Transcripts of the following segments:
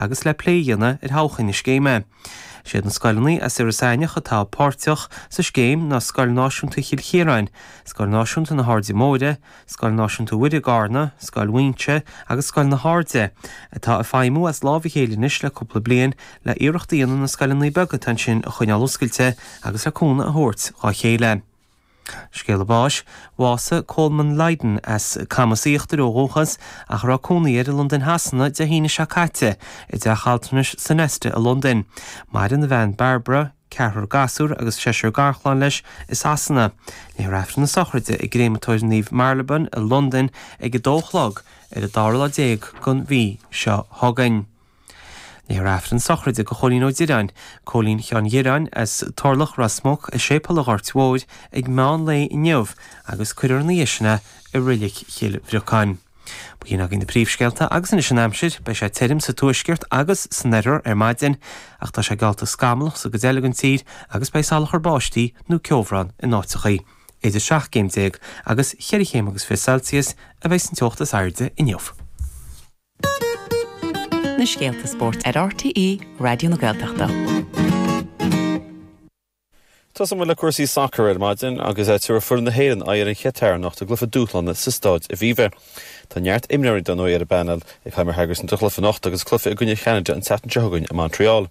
agus le plé a dhéanamh ar thodhchai na scéime. Is iad na scoileanna as Iorras Aithneach atá páirteach sa scéim ná Scoil Náisiúnta Chill Chiaráin, Scoil Náisiúnta na hAirde Móire, Scoil Náisiúnta Mhuire i gCarna, Scoil Mhaínse agus Scoil na hAirde, atá ag feidhmiú as lámh a chéile anois le cúpla bliain le iarracht a dhéanamh na scoileanna beaga atá ansin a choinneáil oscailte agus le cúnamh a thabhairt dhá chéile. Scéala báis, Bhásaigh Colman Lydon, as Camas Íochtair ó dhúchas ach a raibh cónaí air i Londain Shasana, Dé hAoine seo caite i dteach altranais Sonesta i Londain. Maireann a bhean Barbara, ceathrar gasúr agus seisear garchlann leis i Sasana. Léifear aifreann na sochraide i gCréamatóir Naomh Marylebone i Londain ag 2 a chlog ar an dara lá déag den mhí seo chugainn. Léifear aifreann sochraide do Chóilín Ó Direáin, Cóilín Sheáin Dhireáin, as Turlach, Ros Muc, i Séipeal an Ghoirt Mhóir ag meán lae inniu agus cuirfear ina dhiaidh sin é i Reilig Chill Bhriocáin. Ba shin againn na príomhscéalta agus anois an aimsir. Beidh sé tirim sa tuaisceart agus san oirthear ar maidin ach tá sé geallta scamallach sa gcuid eile den tír agus beidh salachar báistí nó ceobhrán in áiteacha. Idir seacht gcéim déag agus cheithre chéim agus fiche Celsius a bheas an teocht is airde inniu. Na scéalta spóirt ar RTÉ Raidió na Gaeltachta. Tosóidh muid le cúrsaí sacair ar maidin agus tabharfaidh foireann na hÉireann aghaidh ar an Chatar anocht i gcluiche dúshlánach sa Stáid Aviva. Tá neart imreoirí dar ndóigh ar an bpainéal ag Heimir Hallgrímsson do chluiche anocht agus cluiche i gcoinne Cheanada an tseachtain seo chugainn i Montreal.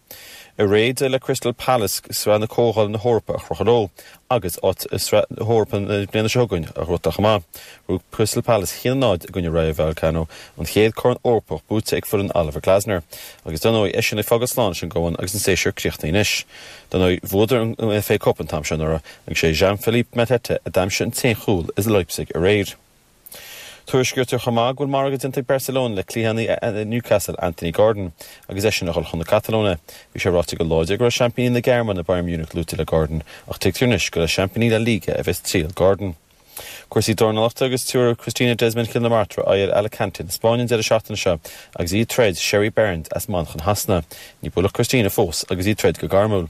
Aréir d'éirigh le Crystal Palace Sraith na Comhdhála na hEorpa a chrochadh leo agus áit i Sraith na hEorpa na bliana seo chugainn a ghnóthú chomh maith, rug Crystal Palace 1-0 i gcoinne Rayo Vallecano, an chéad Chorn Eorpach buaite ag foireann Oliver Glasner. Agus dar ndóigh, eisean ag fágáil slán leis an gCumann agus an séasúr críochnaithe anois. Dar ndóigh, bhuadar an FA Cup an t-am seo anuraidh agus sé Jean-Philippe Mateta a d'aimsigh an t-aon chúl i Leipzig aréir. Tuairiscítear chomh maith go bhfuil margadh déanta ag Barcelona le cliathánaí Newcastle, Anthony Gordon, agus eisean a dhul chun na Catalóine. Bhí sé ráite go láidir go raibh seaimpíní na Gearmáine, Bayern Munich, luaite le Gordon, ach tuigtear anois gur le seaimpíní La Liga a bheas triall Gordon. Cúrsaí dornalachta agus tabharfaidh Christina Desmond Chill na Martra aghaidh ar Alicante na Spáinne an deireadh seachtaine seo agus í ag troid Sherry Barnes as Manchain Shasana. Níor buaileadh Christina fós agus í ag troid go gairmiúil.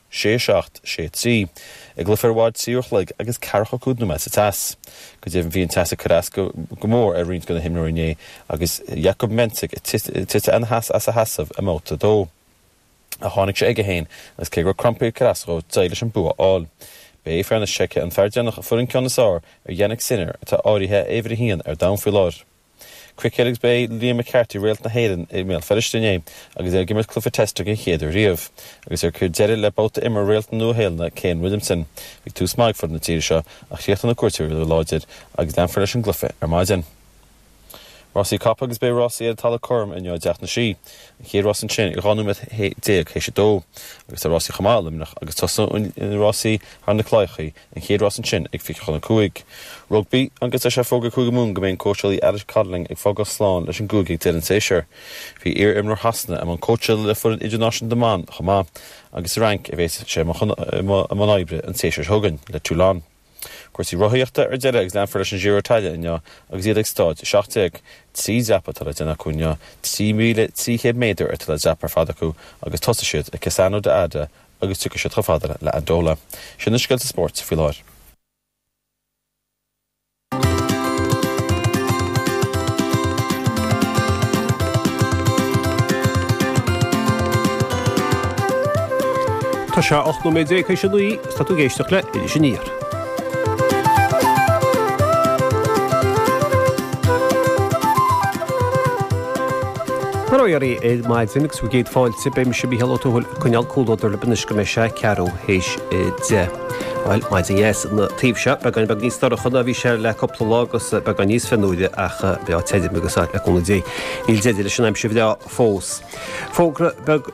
sé seacht, sé trí, i gcluiche a raibh fad trí uair a chloig agus ceathracha cúig nóiméad sa teas. Go deimhin bhí an teas ag cur as go go mór ar roinnt de na himreoirí inné agus Jakub Mensik ag titim ina sheas as a sheasamh i mbabhta a dó. Ach tháinig sé aige féin agus cé go raibh crampaí ag cur as dhó d'éirigh leis an bua a fháil. Ba é fear na Seice an fear deireanach a fuair an ceann is fhearr ar Jannik Sinner atá áirithe ar uimhir a haon ar domhan faoi láthair. Cruicéad agus ba é Liam McCarthy réalt na hÉireann i mBéal Feirste inné agus é ag imirt cluiche Test don chéad uair riamh. Agus é ag cur deireadh le babhta imeartha réalt na Nua-Shéalainne Kane Williamson, bhí tús maith ag foireann na tíre seo ach chríochnaigh na cuairteoirí go láidir agus leanfar leis an gcluiche ar maidin. Rásaí capall agus beidh rásaí ar an talamh cothrom inniu i dTeach na Sí, an chéad rás ansin ag 12 nóiméad théis a dó, agus tá rásaí chomh maith i Luimneach agus tosóidh rásaí thar na claíochaí. An chéad rás ansin ag fiche chun a cúig. Rugbaí, agus tá sé fógartha ag Cúige Mumhan go mbeidh an cóitseálaí Alex Codling ag fágáil slán leis an gcúige ag deireadh an tséasúir? Bhí iar-imreoir Shasana i mbun cóitseála le foireann idirnáisiúnta na mban chomh maith agus sa Fhrainc a bheas sé i mbun oibre an séasúr seo chugainn le Toulon. Cúrsaí rothaíochta ar deireadh agus leanfar leis an Giro d'Italia inniu agus iad ag Stáid 17. Trí dhreapadh atá le déanamh acu inniu, 3,300 méadar atá le dreapadh ar fad acu agus tosóidh siad i Cassano d'Adda agus tiocfaidh siad chomh fada le Andalo. Sin na scéalta spóirt faoi láthair. Tá sé a ocht nóiméad déag tar éis a naoi, is tá tú ag éisteacht le Iris Aniar. Mora dhaoibh ar maidin agus bhur gcéad fáilte, beidh mise, Mícheál Ó Tuathail, ag coinneáil comhluadar libh anois go mbeidh sé ceathrú théis deich. Bhuel, maidin dheas an taobh seo. Beagán beag níos dorcha ná a bhí sé le cúpla lá agus beagán níos fionnuaire ach breá tirim, agus le cúnamh Dé níl deireadh leis an aimsir bhreá fós. Fógra beag.